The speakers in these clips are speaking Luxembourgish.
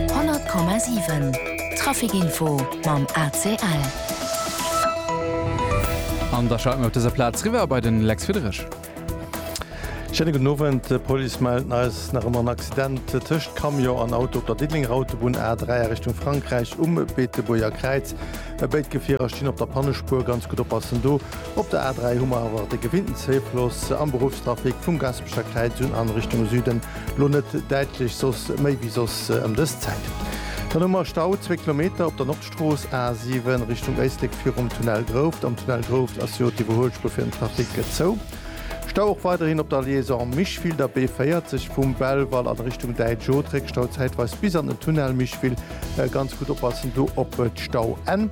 100,7 Traficinfo mam ACL. An da schalte mer op dëser Plaz riwwer bei de Lex Friederich. Schéine gudden Owend. D'Police mellt eis nach ëmmer en Accident tëscht Camion an Auto op der Diddelenger Autobunn A3 a Richtung Frankräich um Beetebuerger Kräiz. Béid Gefierer stinn op der Pannespuer. Ganz gutt oppassen do! Op der A3 hu mer awer de gewinnten Zéifloss am Beruffstrafic vum Gaspecher Kräiz un an Richtung Süden. Lo net däitlech soss, méi wéi soss ëm dës Zäit. Dann hu mer Stau, zwee Kilometer op der Nordstrooss A 7 Richtung Éislek virum Tunnel Grouft. Am Tunnel Grouft ass jo d'Iwwerhuelspuer fir den Trafic gezou. Stau och weiderhin op der Liaison Micheville, der B 40 vum Belval an Richtung Däitsch-Otrek. Stau zäitweis bis an den Tunnel Micheville. Ganz gutt oppassen do op d'Stau-N.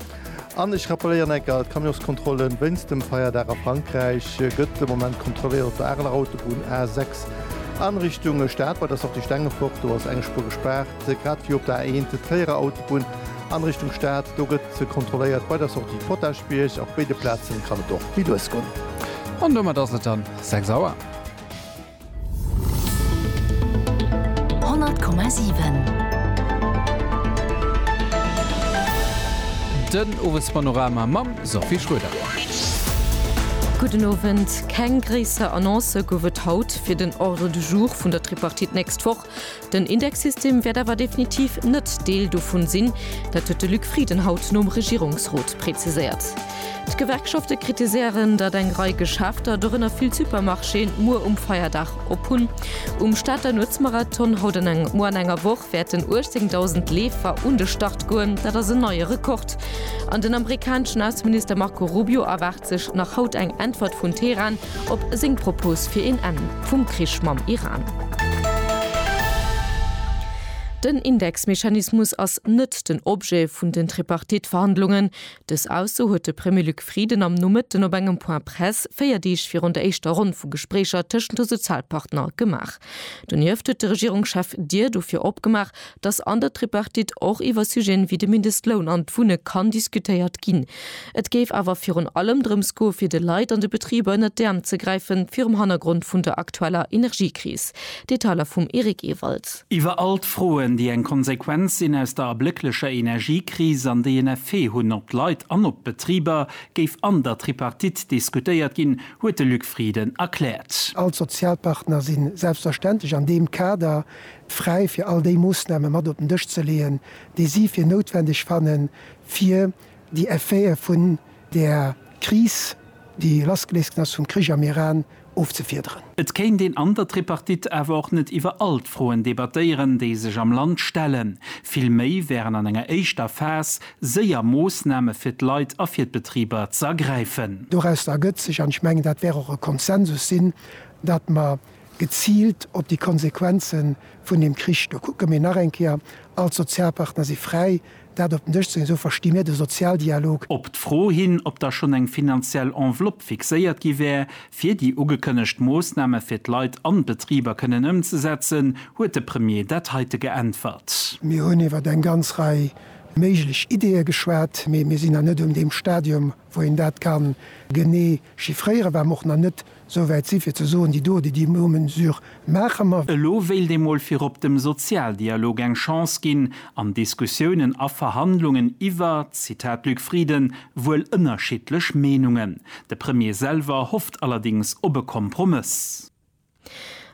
An ech rappeléieren eng Kéier, D'Camionskontrollen wéinst dem Feierdag a Frankräich gëtt de Moment kontrolléiert op der Areler Autobunn A6 a Richtung Stad. Bei der Sortie Stengefort, do ass eng Spuer gespaart, grad ewéi op der A1 d'Tréierer Autobunn a Richtung Stad. Do gëtt kontrolléiert bei der Sortie Potaschbierg. Op béide Plazen kann et och méi lues goen. An domat ass et dann 6 Auer. Den Owespanorama mam Sophie Schröder. Gudden Owend. Keng gréisser Annoncë gouf et haut fir den Ordre du jour vun der Tripartite nächst Woch. Den Indexsystem wäert awer definitiv net Deel dovun sinn. Dat huet de Luc Frieden haut nom Regierungsrot preziséiert. D'Gewerkschafte kritiséieren, datt eng Rei Geschäfter, dorënner vill Supermarchéen, muer um Feierdag op hunn. Um Stater Nuetsmarathon haut an engem Moer an enger Woch wäerten 18.000 Leefer un de Start goen. Dat ass en neie Rekord. An den amerikaneschen Ausseminister Marco Rubio erwaart, sech nach haut eng Äntwert vun Teheran op seng Propos fir een Enn vum Krich mam Iran. Den Indexmechanismus ass net den Objet vun den Tripartite-Verhandlungen. Dës Ausso huet de Premier Luc Frieden am Nomëtten op engem Point Presse, véier Deeg virun der éischter Ronn vu Gespréicher tëschent de Sozialpartner, gemaach. Donieft huet de Regierungschef d'Dier dofir opgemaach, dass an der Tripartite och iwwer Sujeten wéi de Mindestloun an d'Wunne kann diskutéiert ginn. Et géif awer virun allem drëms goe fir de Leit an de Betriber ënnert d'Äerm ze gräife virum Hannergrond vun der aktueller Energiekris. Detailer vum Eric Ewald. Iwwer all d'Froen, déi eng Konsequenz sinn aus der ablécklecher Energiekris an déi en Effet hunn op d'Leit an op d'Betriber, géif an der Tripartite diskutéiert ginn, huet de Luc Frieden erkläert. All d'Sozialpartner si selbstverständlech an deem Kader fräi fir all déi Moossname mat op den Dësch ze leeën, déi si fir noutwendeg fannen, fir déi Effete vun där Kris, déi lassgeléist ginn ass vum Krich am Iran, ofzefiederen. Et kéint een an der Tripartite awer och net iwwer all d'Froen debattéieren, déi sech am Land stellen. Vill méi wären an enger éischter Phas séier Moossname fir d'Leit a fir d'Betriber z'ergräifen. Dorausser ergëtt sech, an ech mengen, dat wär och e Konsensus sinn, datt mer geziilt op déi Konsequenze vun deem Krich. Do kucke mir nach eng Kéier, all d'Sozialpartner si fräi, dat op den Dësch ze leeën, esou versti mir de Sozialdialog. Op d'Fro hin, ob da schonn eng finanziell Enveloppe fixéiert gi wär, fir déi ugekënnegt Moossname fir d'Leit an d'Betriber kënnen ëmzesetzen, huet de Premier dat heite geäntwert. Mir hunn iwwer eng ganz Rei méiglech Ideeë geschwat, mee mir sinn nach net un deem Stadium, wou een dat ka genee Chiffréiere war mer och nach net esou wäit si fir ze soen, déi do, déi déi no Mesure maache mer. Elo wéilt ee mol virop dem Sozialdialog eng Chance ginn an Diskussiounen a Verhandlungen iwwer, Zitat Luc Frieden, wuel ënnerschiddlech Meenungen. De Premier selwer hofft allerdings op e Kompromëss.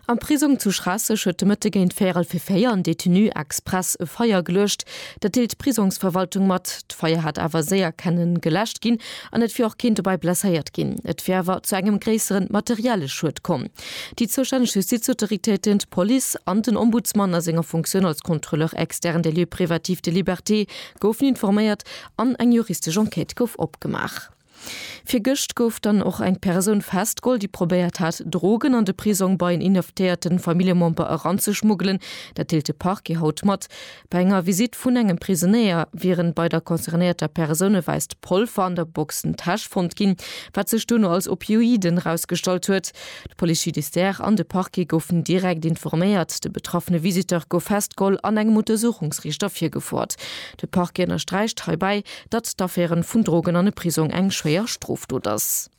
Am Prisong zu Schraasseg huet de Mëtte géint véierel fir véier en Detenu express e Feier geluecht. Dat deelt d'Prisongsverwaltung mat. D'Feier hat awer séier kenne geläscht ginn an et wier och keen dobäi blesséiert ginn. Et wier awer zu engem gréissere materielle Schued komm. Déi zoustänneg Justizautoritéiten, d'Police an den Ombudsman a senger Funktioun als Contrôleur externe des lieux privatifs de liberté goufen informéiert an eng juristesch Enquête gouf opgemaach. Virgëscht gouf dann och eng Persoun festgeholl, déi probéiert hat, Drogen an de Prisong bei en inhaftéierte Familljemember eranzeschmuggelen. Dat deelt de Parquet haut mat. Bei enger Visitt vun engem Prisonéier wieren bei der concernéierter Persoun e wäisst Polver an der Boxentäsch fonnt ginn, wat sech duerno als Opioiden erausgestallt huet. De Police judiciaire an de Parquet goufen direkt informéiert. De betraffene Visiteur gouf festgeholl an engem Untersuchungsriichter virgefoert. De Parquet ënnersträicht heibäi, datt d'Affäre vun Drogen an e Prisong eng schwéier Strofdot ass.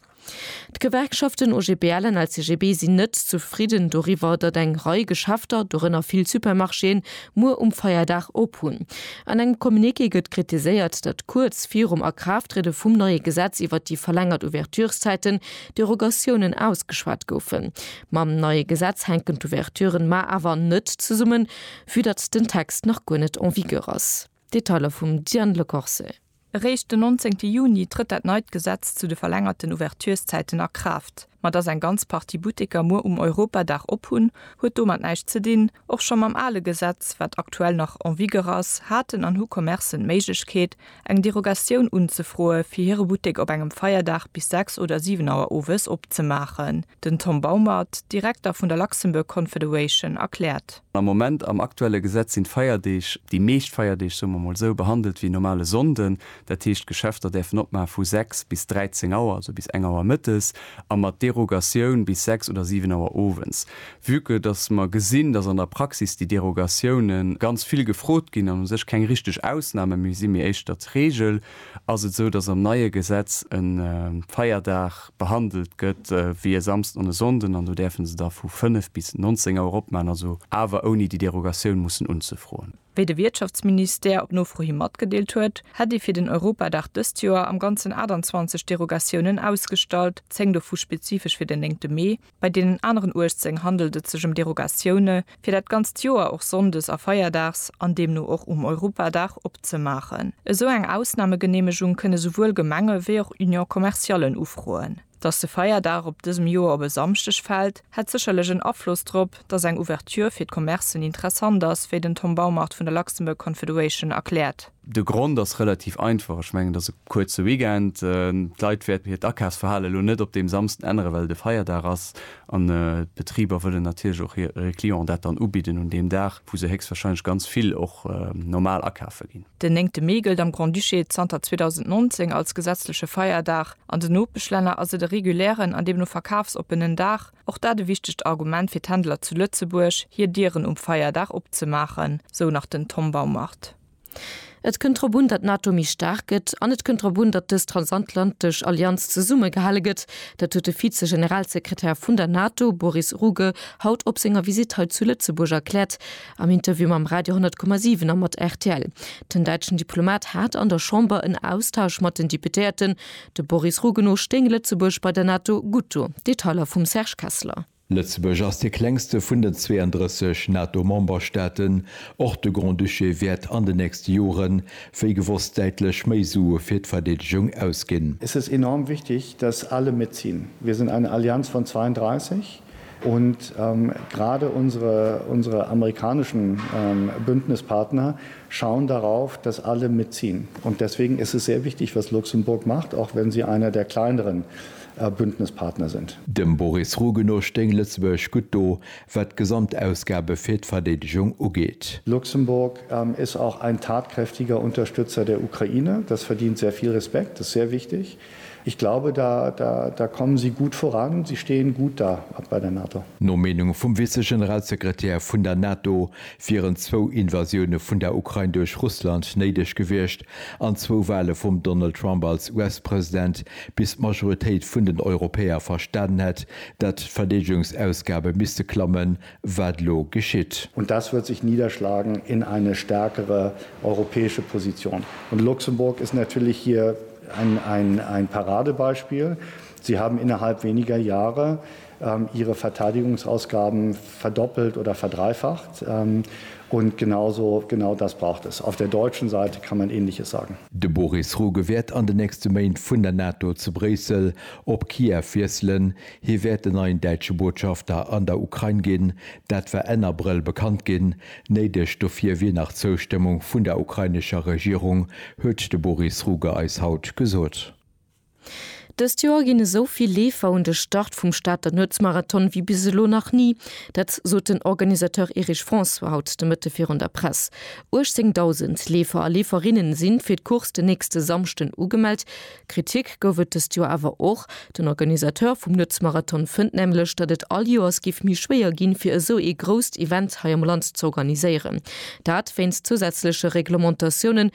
D'Gewerkschaften OGBL an LCGB sinn net zefridden doriwwer, datt eng Rei Geschäfter, dorënner vill Supermarchéen, muer um Feierdag op hunn. An engem Communiqué gëtt kritiséiert, datt kuerz virum Akraafttriede vum neie Gesetz iwwert déi verlängert Ouvertureszäiten, Derogatiounen ausgeschwat goufen. Mam neie Gesetz hänken d'Ouverturen mar awer net zesummen, vü datt den Text nach guer net en vigueur ass. Detailer vum Diane Le Corse. Eréischt den 19 Juni trëtt dat neit Gesetz zu de verlängerten Ouverturszäiten a Kraaft. Ma datt eng ganz Partie Butteker muer um Europadag op hunn, huet domat näischt ze dinn. Och scho mam ale Gesetz, wat aktuell nach en vigueur ass, haten an hu Commercen d'Méiglechkeet, eng Derogatioun unzefroe fir hire Buttek op engem Feierdag bis 6 oder 7 Auer owes opzemaachen. Den Tom Baumert, Direkter vun der Luxembourg Confederation, erkläert. Am Moment, am aktuelle Gesetz, sinn d'Feierdeeg, déi meescht Feierdeeg, soe mer emol esou, behandelt wéi normale Sonnden. Dat heescht, d'Geschäfter däerfen opmaach vu 6 bis 13 Auer, also bis eng Auer mëttes, a mat Derogatioun bis 6 oder 7 Auer owens. Vue que dass mer gesinn, dass an der Praxis déi Derogatioune ganz vill gefrot ginn an u sech keng richteg Ausname méi sinn, mee éischter d'Regel, ass et esou, dass am neie Gesetz e Feierdag, behandelt gëtt wéi e Samsden an e Sonnden an do däerfe se da vu 5 bis 19 Auer opman, also awer ouni déi Derogatioun mussen unzefroen. Wéi de Wiertschaftsministère op Nofro hi matgedeelt huet, hätt ee fir den Europadag dëst Joer am Ganzen 28 Derogatiounen ausgestallt, 10 dovu spezifesch fir den 9 Mee. Bei deenen aneren 18 handelt et sech ëm Derogatioune fir dat ganzt Joer och sonndes a feierdags, an deemno och um Europadag, opzemaachen. Esou eng Ausnamegeneemegung kënne souwuel Gemenge wéi och Union commerciallen ufroen. Datt de Feierdag op dësem Joer op e Samschdeg fält, hätt sécherlech en Afloss drop, datt eng Ouverture fir d'Commercen interessant ass, wéi den Tom Baumart vun der Luxembourg Confederation erkläert. De Grond ass relativ einfach, ech mengen et ass e kuerze Weekend, d'Leit wäerten hiert Akafsverhale lo net op deem Samsden änneren, well et e Feierdag ass an d'Betriber wëllen natierlech och hire Clienten dat dann ubidden un deem Dag, wou se héchstwahrscheinlech ganz vill och normal akafe ginn. Den néngte Mee gëllt am Grand-Duché zanter 2019 als gesetzleche Feierdag. An den Nopeschlänner ass et e regulären an deemno verkafsoppenen Dag. Och dat e wichtegt Argument fir d'Händler zu Lëtzebuerg, hir Dieren um Feierdag opzemaachen, sou nach den Tom Baumart. Et kënnt drop un, datt d'NATO méi staark gëtt an et kënnt drop un, datt dës transatlantesch Allianz zesummegehale gëtt. Dat huet de Vize-Generalsekretär vun der NATO, Boris Ruge, haut op senger Visitt hei zu Lëtzebuerg erkläert am Interview mam Radio 10,7 a mat rtl. Den däitschen Diplomat hat an der Chamber en Austausch mat den Deputéierten. De Boris Ruge no stéing Lëtzebuerg bei der NATO gutt do. Detailer vum Serge Kessler. Lëtzebuerg ass dee klengste vun den 32 NATO-Memberstaaten. Och de Grand-Duché wäert an den nächste Jore wéi gewosst däitlech méi Sue fir d'Verdeedegung ausginn. Es ist enorm wichtig, dass alle mitziehen. Wir sind eine Allianz von 32 und gerade unsere, unsere amerikanischen Bündnispartner schauen darauf, dass alle mitziehen. Und deswegen ist es sehr wichtig, was Luxemburg macht, auch wenn sie einer der kleineren a Bündnispartner sind. Dem Boris Ruge no stéing Lëtzebuerg gutt do, wat d'Gesamtausgabe fir d'Verdeedegung ugeet. Luxemburg ist auch ein tatkräftiger Unterstützer der Ukraine. Das verdient sehr viel Respekt, das ist sehr wichtig. Ich glaube, da, da, da kommen Sie gut voran, Sie stehen gut da bei der NATO. No Meenung vum Vize-Generalsekretär vun der NATO wieren zwou Invasioune vun der Ukrain duerch Russland néideg gewiescht, An zwou Wale vum Donald Trump als US-President, bis d'Majoritéit vun den Europäer verstanen hätt, datt d'Verdeedegungsausgabe misste klammen, wat elo geschitt. Und das wird sich niederschlagen in eine stärkere europäische Position. Und Luxemburg ist natürlich hier ein Paradebeispiel. Sie haben innerhalb weniger Jahre hire Verteidigungsausgaben verdoppelt oder verdreifacht und genau so, genau das braucht es. Auf der deutschen Seite kann man Ähnliches sagen. De Boris Ruge wäert an de nächste Méint vun der NATO zu Bréissel op Kiew wiesselen. Hie wäert den neien däitsche Botschafter an der Ukrain ginn. Dat war Enn Abrëll bekannt ginn. Néideg dofir wier nach d'Zoustëmmung vun der ukrainescher Regierung, huet de Boris Ruge eis haut gesot. Dëst Joer ginn esou vill Leefer un de Start vum Stater Nuetsmarathon wéi bis elo nach ni. Dat sot den Organisateur Erich François haut de Mëtte virun der Press. 18.000 Leefer a Leeferinne si fir d'Course den nächste Samschden ugemellt. Kritik gouf et dëst Joer awer och. Den Organisateur vum Nuetsmarathon fënnt nämlech, datt et all Joers géif méi schwéier ginn, fir esou ee grousst Event hei am Land z'organiséieren. Dat wéinst zousätzleche Reglementatiounen,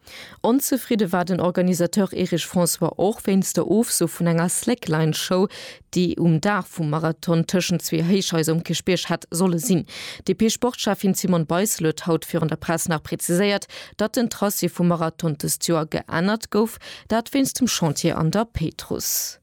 Onzefridde war den Organisateur Erich François och wéinst der Ofso vun enger Slackline-Show, déi um Dag vum Marathon tëschent zwee Héichhaiser um Kierchbierg hätt solle sinn. D'DP-Sportschäffin Simone Beissel huet haut virun der Press nach preziséiert, datt den Tracé vum Marathon dëst Joer geännert gouf, dat wéinst dem Chantier an der Péitruss.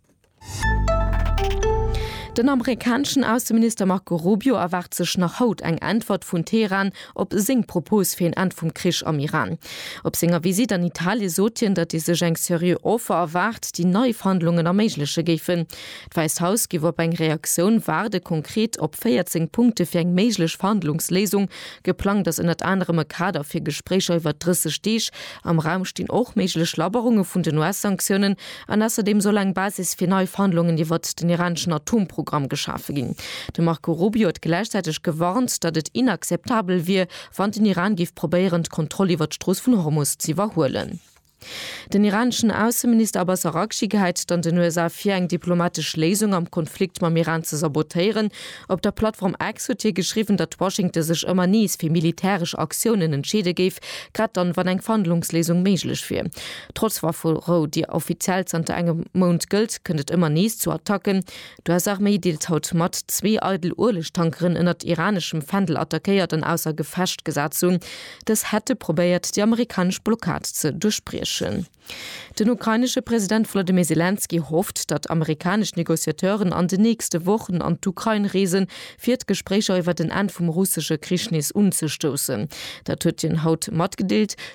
Den amerikaneschen Ausseminister Marco Rubio erwaart sech nach haut eng Äntwert vun Teheran op seng Propos fir een Enn vum Krich am Iran. Op senger Visitt an Italie sot hien, datt ee sech eng seriö Offer erwaart, déi nei Verhandlungen erméigleche géifen. D'Wäisst Haus géif op eng Reaktioun waarden. Konkret op 14 Punkte fir eng méiglech Verhandlungsléisung. Geplangt ass ënnert anerem e Kader fir Gespréicher iwwer 30 Deeg. Am Raum stinn och méiglech Labberunge vun den US-Sanktiounen, An ausserdeem soll eng Basis fir nei Verhandlungen iwwert den iraneschen Atomprogramm geschafe ginn. De Marco Rubio huet gläichzäiteg gewarnt, datt et inakzeptabel wier, wann den Iran géif probéieren, d'Kontroll iwwert d'Strooss vun Hormus z'iwwerhuelen. Den iraneschen Ausseminister Abbas Araghchi gehäit et an den USA vir, eng diplomatesch Léisung am Konflikt mam Iran ze sabotéieren. Op der Plattform X huet hie geschriwwen, datt Washington sech ëmmer nees fir militäresch Aktiounen entscheede géif, grad dann, wann eng Verhandlungsléisung méiglech wier. Trotz Wafferou, déi offiziell zanter engem Mount gëllt, kënnt et ëmmer nees zu Attacken. D'US-Arméi deelt haut mat, zwee eidel Uelegtankeren ënnert iraneschem Fändel attackéiert an ausser Gefecht gesat ze hunn. Dës hätte probéiert, déi amerikanesch Blockad ze duerchbriechen. Den ukrainesche President Volodymyr Selenskyj hofft, datt amerikanesch Negociateuren an den nächste Wochen an d'Ukrain reesen, fir d'Gespréicher iwwer en Enn vum russesche Krich nees unzestoussen. Dat huet hien haut matgedeelt.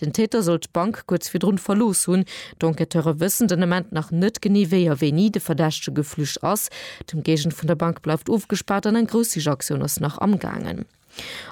Den Täter soll d'Bank kuerz virdrun verlooss hunn. D'Enquêteure wëssen den Ament nach net genee, wéi a wéini de Verdächtege geflücht ass. D'Ëmgéigend vun der Bank bleift ofgespaart an eng grouss Sichaktioun ass nach amgaangen.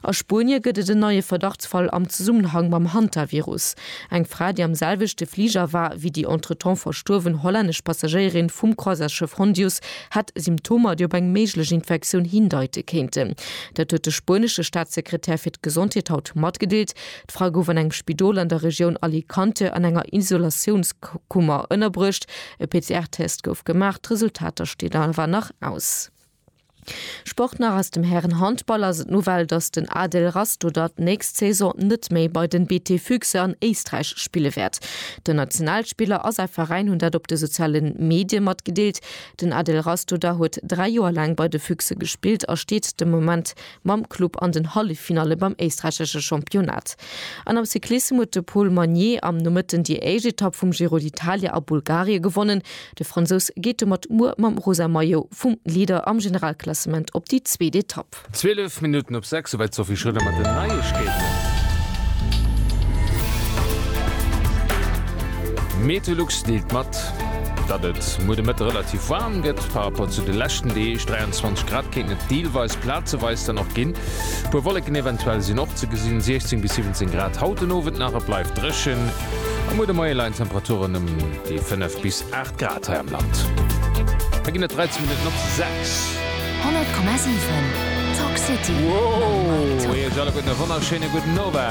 A Spuenie gëtt et en neie Verdachtsfall am Zesummenhang mam Hantavirus. Eng Fra, déi am selwechte Fliger war ewéi déi entretemps verstuerwen hollännesch Passagéierin vum Croisièresschëff Hondius, hätt Symptomer, déi op eng méiglech Infektioun hindeite kéinten. Dat huet de spuenesche Staatssekretär fir d'Gesondheet haut matgedeelt. D'Fra gouf an engem Spidol an der Regioun Alicante an enger Isolatiounskummer ënnerbruecht. E PCR-Test gouf gemaach, d'Resultater stinn awer nach aus. Sport nach Aus dem Hären-Handball ass et d'Nouvelle, datt den Adel Rastoder d'nächst Saison net méi bei den BT Füchse an Éisträich spille wäert. Den Nationalspiller a säi Veräin hunn dat op de soziale Medie matgedeelt. Den Adel Rastoder huet dräi Joer laang bei de Füchse gespillt a steet de Moment mam Club an den Halleffinalle beim éisträichesche Championnat. An am Cyclissem huet de Paul Magnier am Nomëtten déi éischt Etapp vum Giro d'Italia a Bulgarie gewonnen. De Fransous geet domat muer mam rosa Maillot vum Leader am Generalklassement op déi zweet Etapp. 12 Minutten op 6, souwäit d'Sophie Schröder mat den Neiegkeeten. Meteolux deelt mat. Datt et muer de Mëtte relativ waarm gëtt par Rapport zu de leschten Deeg, 23 Grad, kéinten et deelweis plazeweis dann och ginn. E puer Wolleken eventuell sinn och ze gesinn, 16 bis 17 Grad haut den Owend nach. Et bleift dréchen a muer de Moie leien d'Temperaturen ëm déi 5 bis 8 Grad hei am Land. Et ginn et 13 Minutten op 6. 100,7 Talk City mam Mike Tock.